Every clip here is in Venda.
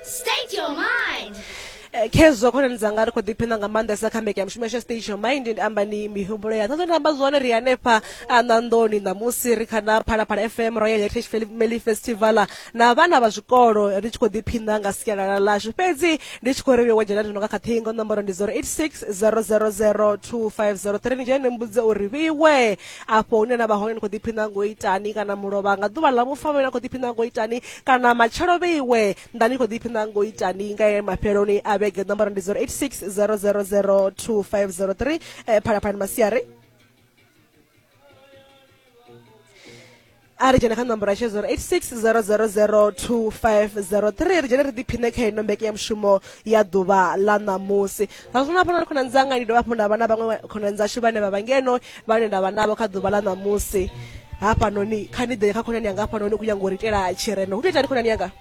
State your mind. Eh, khezwo khonani dzanga ri khou ḓiphina nga maanḓesa kha mbekanyamushumo yashu ya stage your mind ndi amba ni mihumbulo ya ṱoḓo namba zwone ri hanefha a ṋanḓoni ṋamusi ri kha na phalaphala fm royal heritage Fel- meli festival na vhana vha zwikolo ri tshi khou ḓiphina nga sialala lashu fhedzi ndi tshi khou ri wo dzhena nga kha ṱhingo nomboro ndi 086 000 2503 ni dzhene ni mbudze uri vhiwe afho hune na vha hone ni khou ḓiphina ngo itani kana mulovha nga ḓuvha ḽa vhufa vhe na khou ḓiphina ngo itani kana matshelo vheiwe nda ni khou ḓiphina ngo itani nga ye mafheloni a vhege ṋomboro ndi 086 000 2503 eh, phalaphalani masiari a ri dzhene kha nomboro yashe 0860002503 ri dzhene ri ḓiphine kha ino mbeke ya mushumo ya ḓuvha ḽa ṋamusi sa zwino hafho na khonani dzanga ndi dovha hafhu nda vha na vhaṅwe khonani dzashu vhane vha vha ngeno vhane nda vha navho kha ḓuvha ḽa ṋamusi hafhanoni kha ni ḓe kha khonani yanga hafhanoni u khou nyanga u ri itela tshirendo hu to itani khonani yanga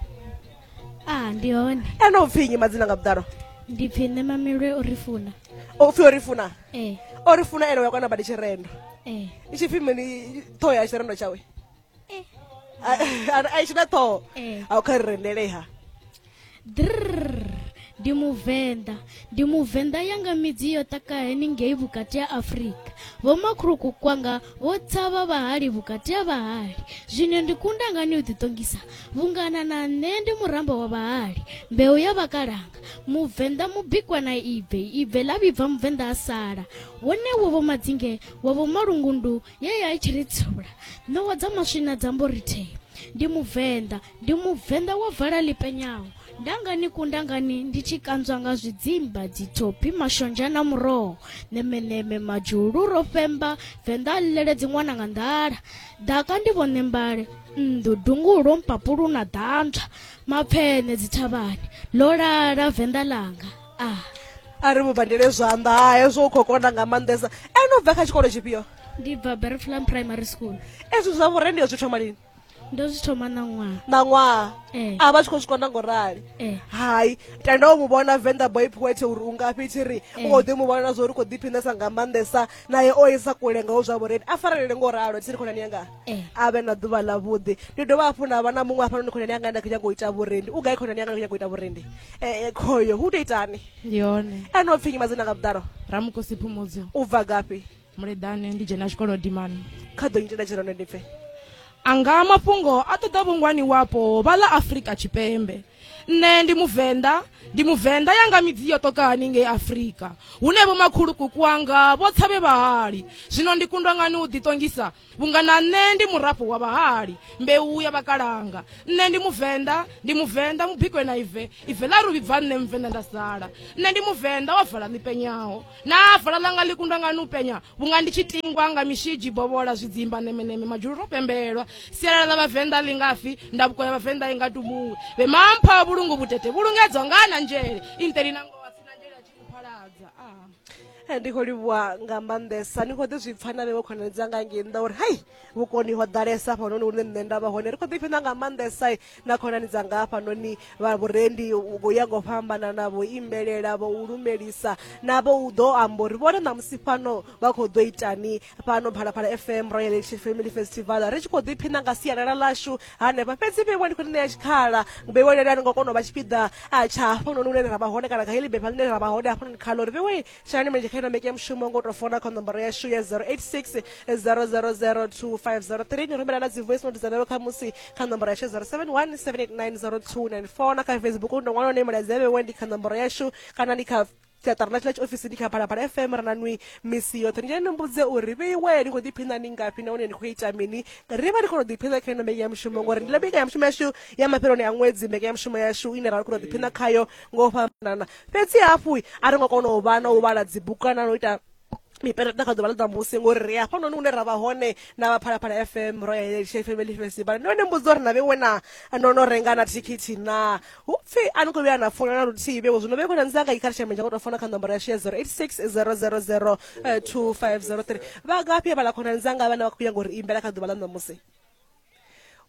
a ndi hone ene u pfi nnyi madzina nga vhuḓalo ndi pfi nṋe mamelwe u ri funa o pfi o ri funa ee o ri funa ene uya kwana badi tshirendo ee i tshi pfi mini ṱhoho ya tshirendo tshawe ee a i tshina ṱhoho Eh. a u kha ri rendeleha Drrrr, ndi muvenḓa ndi muvenḓa yanga midzi yo taka heningei vhukati ha afurika vhomakhuluku kwanga vho tshavha vhahali vhukati ha vhahali zwino ndi kunda ngani u ḓiṱongisa vhungana na nṋe ndi muramba wa vhahali mbeu ya vhakalanga mubvenḓa mubikwa na ibve ibve ḽa vhibva mubvenḓa a sala wone wo vho madzinge wa vho malungundu ye ya i tshi ri tsula ṋowa dza maswina dza mbo rithee ndi mubvenḓa ndi mubvenḓa wa vala ḽi penyaho ndangani kundangani ndi tshi kanzwa nga zwidzimba dzithophi mashonzha na muroho ṋemeṋeme madzhulu ro femba venḓa a ḽileledzi ṅwana nga nḓala ḓaka ndi vhone mbale nnḓu dungulo mpapulu na ḓantswa mapfene dzithavhani ḽo lala venḓa langa a ah. a ri mu bandele zwanḓa ha hezwo u khou kona nga maanḓesa ene u bva kha tshikolo tshifhio ndi bva berflam primary school ezwi zwa vhurende yo zwi thoma lini ndo zwi thoma na ṅwaha na ṅwaha eh. a vha tshi khou zwi kona ngo rali eh. hai tenda u mu vhona venḓa boy poet uri u ngafhi thi ri u eh. khou ḓi mu vhona zwo uri u khou ḓiphinesa nga maanḓesa naye o isa kule ngaho zwa vhureni a farelele ngo ralo ndi tsini khonani yanga eh. a vhe na ḓuvha ḽa vhuḓi ndi dovha hafhu nda vha na muṅwe hafhanoni khonani yanga nda khou nyanga u ita vhurendi u gai khonani yanga ndi khou nyanga u ita vhurendi eh, eh, khoyo hu tou itani ndi hone ene o pfinyi madzina nga vhuḓalo ramukosi phumudzo u bva gafhi muleḓane ndi dzhena tshikolo dimani kha ḓo nyitela tshirano ndi pfe anga mafhungo a ṱoḓa vhungwani wapo vha ḽa afurika tshipembe nṋe ndi muvenḓa ndi muvenḓa yanga midzi yo ṱoka haningei afurika hune vhomakhulukuku wanga vho tshavhe vhahali zwino ndi kundwa ngani u ḓiṱongisa vhunga na nṋe ndi murafho wa vhahali mbeu ya vhakalanga nṋe ndi muvenḓa ndi muvenḓa mubikwe na ive ive ḽa ri vhibva nṋe muvenḓa nda sala nṋe ndi muvenḓa wa vala ḽipenyaho naa vala ḽanga ḽi kundwa nga nu penya vhunga ndi tshi tingwa nga mishidzi bovhola zwidzimba nemeneme madzhulu ro pembelwa sialala ḽa vhavenḓa ḽi ngafi ndavuko ya vhavenḓa i nga tumuwe vhe mampha vhulungu vhutete vhulungedzwa nga na nzhele inteli na ngowa sina nzhele a tshi kuphaladza a eh, ndi khou livhuwa nga maanḓesa ni khou ḓi zwi pfa na vhewe khonani dzanga ngei nnḓa uri hai vhukoni ho ḓalesa hafhanoni hune nṋe nda vha hone ri khou ḓi pfhina nga maanḓesa na khonani dzanga hafhanoni vha vhurendi vho ya ngo fhambanana vho imbelela vho u lumelisa navho u ḓo amba uri vhone ṋamusi fhano vha khou ḓo itani fhano phalaphala fm royal election family festival ri tshi khou ḓiphina nga sialala lashu hanefha fhedzi vheiwa ndi khou ni ṋea tshikhala vheiwa lelani ngo kona u vha tshipiḓa tsha hafhanoni hune ra vha hone kana kha heḽi bepha ḽine ra vha hone hafhanoni khalo ri vheiwe tshinani mulenzhe kha ino mbeke mushumo ngo tou fona kha nomboro yashu ya 086 000250 ni rumela na dzi voice note dza lelo kha musi kha nomboro yashu 071 7890294 na kha facebook ndo ṅwana one mulaedza vhewe ndi kha nomboro yashu kana ndi kha siaṱari ḽa tshila tshiofisi ndi kha phalaphala fm ra na nwi misi yoṱhe ni ni mbudze uri vheiwe ni khou ḓiphina ni ngafhi nahone ni khou ita mini ri vha ni khou ḓiphina kha ino mbeke ya mushumo ngori ndi ḽa mbeke ya mushumo yashu ya mafheloni a ṅwedzi mbeke ya mushumo yashu ine ra khou ḓiphina khayo ngo fhambanana fhedzi hafhu a ri ngo kona u vha na u vhala dzibugu kana na u ita mipereta kha ḓuvha ḽa ṋamusi ngori ri hafhanoni hune ra vha hone na vha phalaphala fm royal family festival ndo ne mbudzi uri na vhewe na no no renga na thikhithi na hu pfi a ni khou vhuya na fola na luthihi vhewe zwino vhewe na ndzi anga ikhala tshameja ngo tou fona kha nomboro yashu ya 0860002503 vha ngafhi vhala khona ndzi anga vhane vha khou ya ngori imbela kha ḓuvha ḽa ṋamusi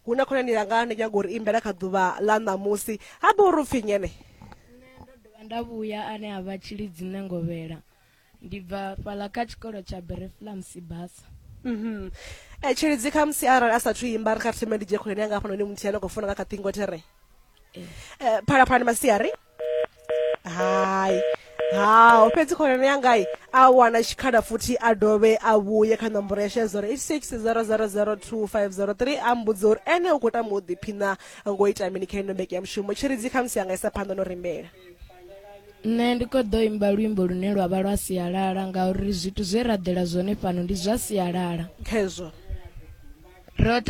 hu na khonani yanga ndi nyago uri imbela kha ḓuvha ḽa ṋamusi ha bo uri upfhi nyene nda vhuya ane a vha tshilidzi nṋe ngovhela ndi bva fhala kha tshikolo tsha bereflam sibasa mhm eh tshilidzi kha musi arali a sathu imba ri kha thembe ndi dzhe khonani yanga hafhanoni muthihi ane khou funa nga kha ṱhingo there eh, eh phalaphalani masiari hai haho fhedzi khonani yangai a wana tshikhala futhi a dovhe a vhuye kha ṋomboro ya shedza uri 8600025003 a mbudza uri ene u khou tama u ḓiphina ngo ita mini kha ino mbeke ya mushumo tshiridzi khamusi yanga isa phanḓa no rimbela nṋe ndi khou ḓo imba luimbo lune lwa vha lwa sialala ngauri zwithu zwe ra ḓela zwone fhano ndi zwa sialala khezwo ro